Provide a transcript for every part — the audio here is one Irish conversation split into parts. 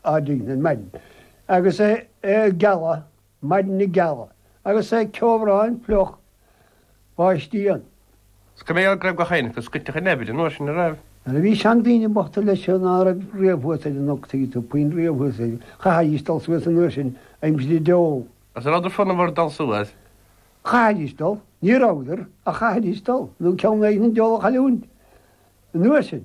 Ar maidin agus é ag gealadh, maidin ag gealadh agus é ag ceobhrán fliuch báistí ann. Scolaire go raibh gach éinne acu scoiteach in Eibhlin nuair sin a raibh. Nuair a bhí seandaoine bochta leis seo ná raibh riamh thuas ar an gcnoc tuigeann tú puinn riamh thuas air chaithfidís dul suas an uair sin aimsir an dole. Agus an rabhadar fonnamhar dul suas? Chaithfidís dul. Ní rabhadar ach chaithfidís dul nó ceann éigin an dole a chailliúint an uair sin.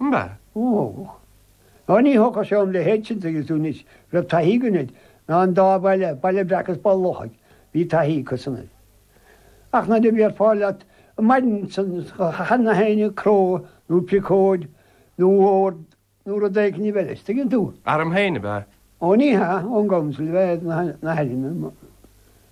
Mba mhó thógadh. Ná ní thógfadh sé orm le héigint tuigeann tú anois. Raibh taithí againn air. Ná an dá bhaile, Baile Breac is Baile an Lochaigh, bhí taithí acusan air. Ach nuair a bhí ar fáil leat an mhaidin san chan na haoine, cró nó piocóid nó ord nó rud éigin a bheith leis, tuigeann tú. Airm féin ab ea? Ó ní hea, ón gcouncil ab ea é na hairm.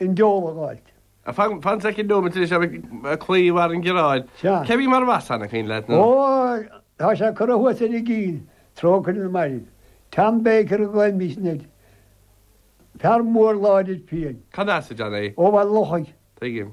i ngeall a ghoid. Fan soicind nóiméad tar éis dom cloí i bhfad an gearáin. Cé a bhí mar bhasán ag féin leat nó? Ó, tá sé curtha thuas ar an gCill, trócaire ar na mairbh. Tom Baker a ghlaoimís air. Fear mór láidir fiáin. Cad as ab ea é? Ó Bhaile an Lochaigh. Tuigim.